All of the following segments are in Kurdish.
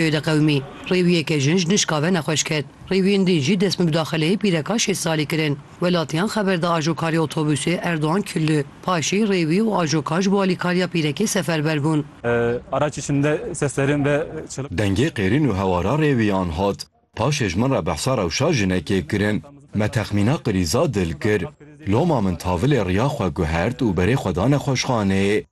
Êde qewimî, rêwiyeke jin ji nişka ve nexweş ket. Rêwiyên din jî dest bi mudaxeleyê pîreka şêst salî kirin. Welatiyan xeber da ajokarê otobusê Erdogan Küllü. Paşê rêwî û ajokar ji bo alîkariya pîrekê seferber bûn. Araç içinde seslerin ve çığlık. Dengê qêrîn û hewara rêwiyan hat. Paşê ji min re behsa rewşa jinekê kirin. Me texmîna qirîza dil kir. Loma min tavilê riya xwe guhert û berê xwe da nexweşxaneyê.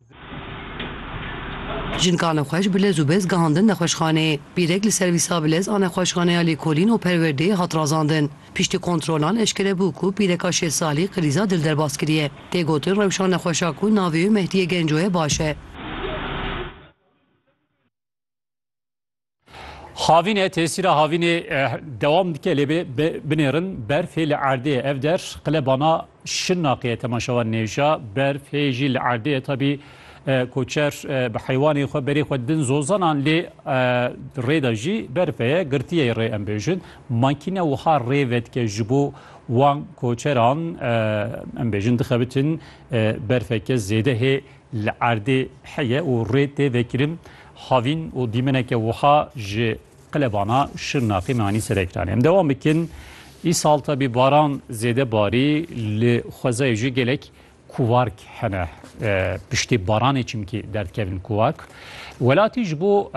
Jin kanexweş bi lez û bez gihandin nexweşxanê. Bîrek li servîsa bi lez a nexweşxaneya lêkolîn û perwerdeyê hat razandin. Piştî kontrolan eşkere bû ku pîreka şêst salî krîza dil derbas kiriye. Tê gotin rewşa nexweşa ku navê wê Mehdiye Genco ye baş e. Havîne tesîra havînê eh, dewam dike lê binêrin berfê li erdê ev der qilebana şinaqê temaşewan nêja berfê jî li erdê tabî eh, koçer eh, bi heywanê xwe berê xwe din zozanan lê rêda jî berfeye girtiye rê em bêjin makîne wiha rê vedike ji bo wan koçeran em bêjin dixebitin berfeke zêde hê Li erdê heye û rê tê vekirin havîn û dîmeneke wiha ji qilebana Şirnexê me anî ser ekranê. Em dewam bikin. Îsal tabî baran zêde barî li xwezayê jî gelek kuwark hene piştê baranê çimkî derdkevin kuwark. Welatî ji bo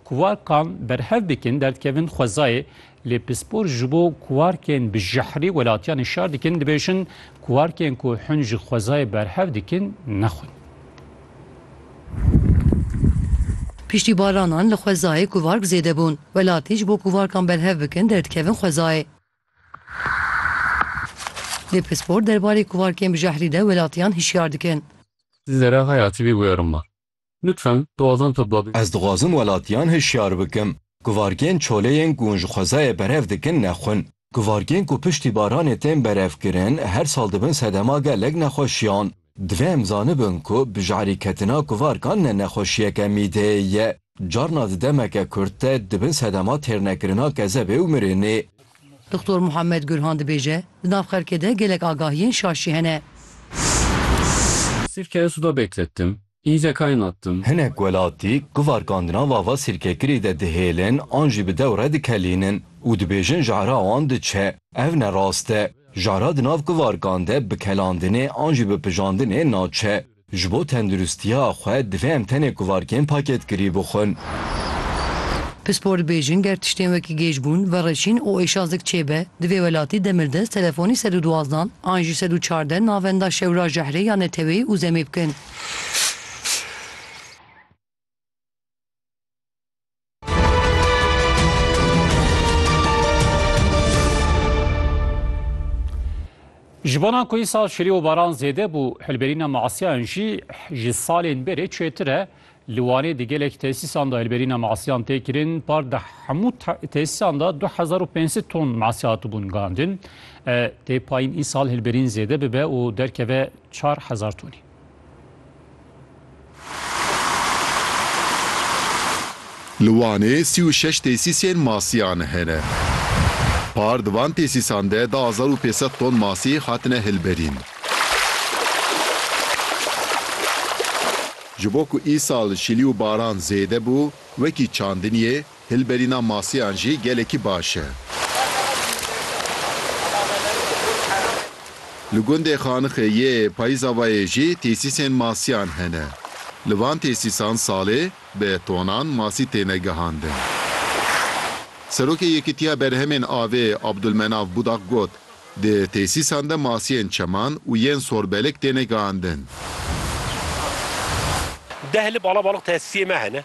kuwarkan berhev bikin derdkevin xwezayê Lê pispor ji bo kuarkên bi jehrî welatiyan hişyar dikin, dibêjin kuarkên ku hûn ji xwezayê berhev dikin nexwin. Piştî balanan li xwezayê kuark zêde bûn. Welatî ji bo kuarkan berhev bikin derdikevin xwezayê. Lê pispor derbarê kuarkên bi jehrî de welatiyan hişyar dikin. Zera xwe ya tivî wêrima. Lütfen doğadan topla bê. Ez dixwazim welatiyan hişyar bikim ku vargên çoleyên ku hûn ji xwezayê berev dikin nexwin. Ku vargên ku piştî baranê tên berevkirin her sal dibin sedema gelek nexweşiyan. Divê em zanibin ku bijarîketina kuvarkan ne nexweşiyeke mîdeyê ye. Carna di demeke kurt de dibin sedema têrnekirina kezebê û mirinê. Dixtor Muhammed Gurhan dibêje, Di nav xelkê de gelek agahiyên şaş jî hene. Sirkeye suda beklettim, îze kaynattim. Hinek welatî guvarkandina vava sirkekirî de dihêlin an jî bi dewre dikelînin û dibêjin jehra wan diçe. Ev ne rast e. Jehra di nav guvarkan de bi kelandinê an jî bi pijandinê naçe. Ji bo tendirustiya xwe divê em tenê kuvarkên pakêtkirî bixwin. Pispor dibêjin ger tiştên wekî gêjbûn, vereşîn û êşazik çêbe, di vê welatî demirdest telefonî sed û duwazdan an jî sed û çardeh navenda şewra jehrê ya neteweyî û zemê bikin. Ji bona ku îsal şirî û baran zêde bû, hilberîna masiyan jî ji salên berê çêtir e. Li Wanê di gelek tesîsan de hilberîna masiyan tê kirin. Par di hemû tesîsan de 2500 ton masî hatibûn guhandin. Tê payîn îsal hilberîn zêde bibe û derkeve 4000 tonî. Li Wanê sî û şeş tesîsên masiyan hene. Par di van tesîsan de du hezar û pênc sed ton masî hatine hilberîn. Ji bo ku îsal şilî û baran zêde bû, wekî çandiniyê, Hilberîna masiyan jî gelekî baş e. Li gundê Xanixê yê Payizavayê jî têsîsên masiyan hene. Li van têsîsan salê bi tonan masî têne gihandin. Serokê Yekîtiya Berhemên Avê Abdulmenav Budak got, Di têsîsan de masiyên çeman û yên sorbelek têne gihandin. Deh li Balabalix tesîsiyê me hene.